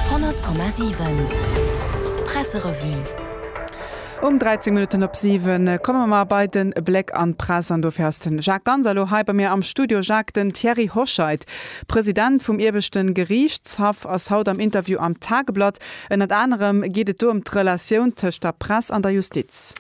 100,7 Presserevue Um 13 Minutten op 7 komme mer bei de Bléck an d'Press an dofir ass de Jacques Ganz elo hei bei mir am Studio. Jacques, den Thierry Hoscheit, President vum Ieweschte Geriichtshaff ass haut am Interview am Tageblatt. Ënnert anerem geet et do ëm d'Relatioun tëscht der Press an der Justiz.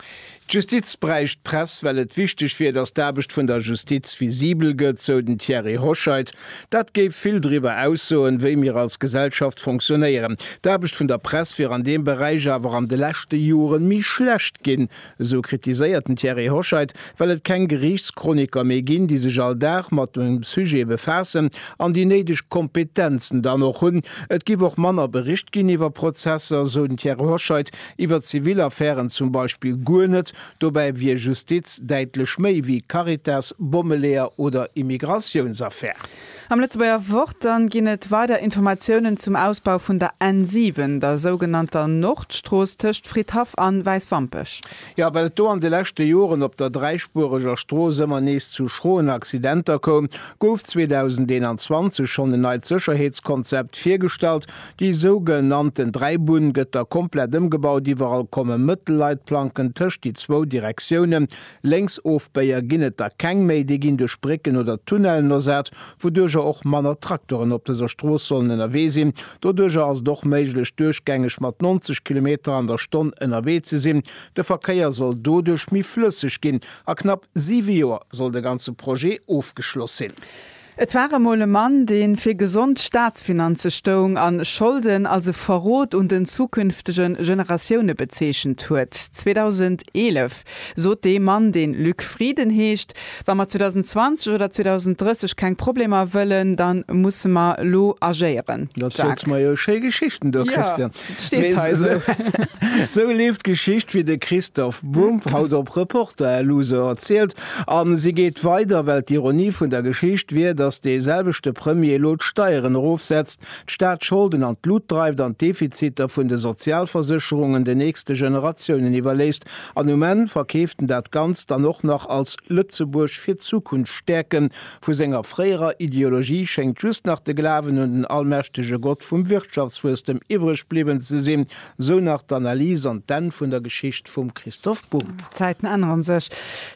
D'Justiz bräicht d'Press, well et wichteg wier, datt d'Aarbecht vun der Justiz visibel gëtt, sou den Thierry Hoscheit. Dat géif vill driwwer aussoen, wéi mir als Gesellschaft fonctionnéieren. D'Aarbecht vun der Press wier an deem Beräich awer an de leschte Joren méi schlecht ginn, sou kritiséiert den Thierry Hoscheit, well et keng Geriichtschroniker méi ginn, déi sech all Dag mat dem Sujet befaassen an déi néideg Kompetenzen dann och hunn. Et giff och manner bericht ginn iwwer Prozesser, sou den Thierry Hoscheit, Iwwer zivil Affären zum Beispill guer net, dobäi wier Justiz däitlech méi wéi Caritas, Bommeleeër oder Immigratiounsaffär. Am Lëtzebuerger Wort dann ginn et weider Informatiounen zum Ausbau vun der N7, der sougenannter Nordstrooss tëscht Fridhaff an Wäiswampech. Jo, well et do an de leschte Joren op der dräispuereger Strooss ëmmer nees zu schroen Accidenter koum, gouf 2021 schonn en neit Sécherheetskonzept virgestallt, Déi souge nannten Dräibunn gëtt da komplett ëmgebaut, iwwerall komme Mëttelleitplanken tëscht déi zwou Direktiounen, Lénksofbéier ginn et da keng méi, déi ginn duerch Brécken oder Tunnellen ersat, wouduerger och manner Traktoren op dëser Strooss sollen ënnerwee sinn. Doduerger ass et och méiglech duerchgängeg mat 90 Kilometer an der Stonn ënnerwee ze sinn. De Verkéier soll doduerch méi flësseg ginn. A knapp siwe Joer soll de ganze Projet ofgeschloss sinn. Et war emol e Mann, deen fir gesond Staatsfinanze stoung an Scholden als e Verrot un den zukünftige Generatioune bezeechent huet. 2011 sot dee Mann, deen Luc Frieden heescht, Wa mer 2020 oder 2030 keng Problemer wëllen, dann musse mer lo agéieren. Jacques. Erziels mer jo schéi Geschichten do, Christian. Steet hei esou. Sou leeft d'Geschicht, wéi de Christophe Bumb haut op Reporter LU se erzielt. A si geet weider, well d'Ironie vun der Geschicht wier, datt dee selwechte Premier elo d'Steieren erofsetzt, d'Staatsscholden an d'Lut dreift an d'Defiziter vun de Sozialversécherungen den nächste Generatiounen iwwerléisst. An um Enn verkeeft en dat Ganzt dann och nach als Lëtzebuerg fir d'Zukunft stäerken, Vu senger fréierer Ideologie schéngt just nach de Glawen un den allmächtege Gott vum Wirtschaftswuesstem iwwreg bliwwen ze sinn, sou nach d'Analys an d'Enn vun der Geschicht vum Christoph Bumb. D'Zäiten änneren sech.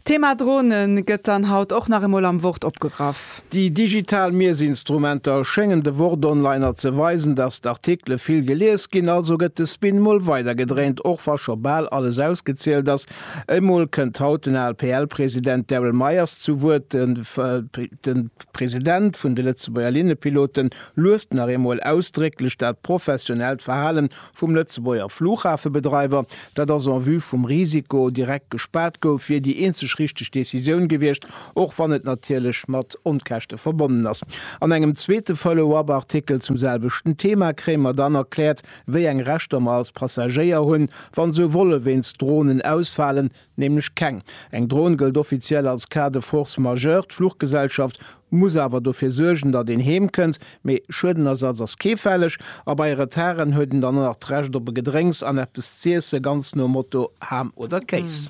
D'Thema Drone gëtt dann haut och nach emol am Wort opgegraff. Déi digital Miesinstrumenter schéngen de Wort-Onliner ze weisen, datt d'Artikele vill gelies ginn. Also gëtt de Spin mol weidergedréint, och wa scho bal alles ausgezielt ass. Emol kënnt haut den ALPL-President Darryl Myers zu Wuert. De President vun de Lëtzebuerger Linnepiloten lueft nach eemol ausdrécklech dat professionellt Verhalen vum Lëtzebuerger Flughafebedreiwer. Dat ass en vue vum Risiko direkt gespaart gouf, wier déi eenzeg richteg Decisioun gewiescht, och wann et natierlech mat Onkäschte verbonnen ass. An engem zweete Follow-up-Artikel zum selwechten Thema kréie mer dann erkläert, Wéi eng Rechter mer als Passagéier hunn, wa sou Volle wéinst Dronen ausfalen? Nämlech keng. Eng Dron gëllt offiziell als Cas de force majeure. D'Fluchgesellschaft muss awer dofir suergen, datt een heem kënnt. Mee Schuedenersatz ass kee fälleg a bei Retarden huet en dann och nach d'Recht op e Gedrénks an eppes z'iesse, ganz nom Motto Ham oder Kéis.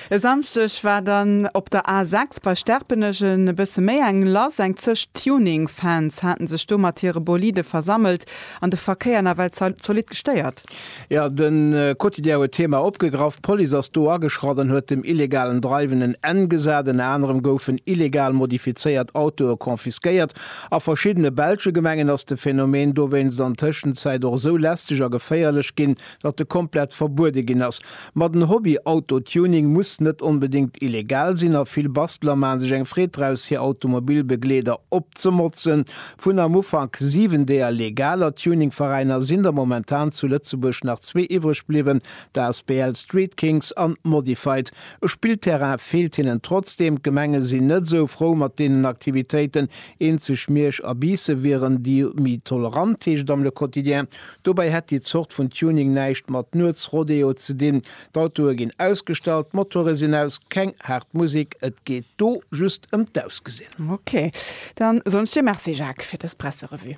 E Samschdeg war dann op der A 6 bei Sterpenech e bësse méi eng lass. Eng Zeg Tuning-Fans hate sech do mat hire Bolide versammelt An de Verkéier nawell zolidd gestéiert. Jo, de Quotidien huet d'Thema opgegraff. D'Police ass do ageschratt an huet dem illegalen Dreiwen en Enn gesat. Ënner anerem goufen illegal modifizéiert Autoe confisquéiert. A verschiddene belsche Gemengen ass de Phänomen dowéinst an Tëschenzäit och esou lästeg a geféierlech ginn, datt e komplett verbuede ginn ass, ma den Hobby Autotuning muss net onbedéngt illegal sinn a vill Basteler maache sech eng Freed draus hir Automobilbegleeder opzemotzen. Vun am Ufank 7 deeër legaler Tuningveräiner sinn der momentan zu Lëtzebuerg nach zwee iwwreg bliwwen, d'Asbl Street Kings an Modified. E Spillterrain feelt hinnen trotzdeem, d'Gemenge sinn net esou frou mat deenen Aktivitéiten, eenzeg Miersch a Biissen wieren déi méi tolerant, heescht et am Le Quotidien. Dobäi hätt déi Zort vun Tuning näischt mat Nuetsrodeo ze dinn. D'Autoe ginn ausgestallt, d'Motore sinn aus, keng haart Musek, et geet do just ëm d'Ausgesinn. Ok, dann soen ech dir Merci Jacques fir dës Presserevue.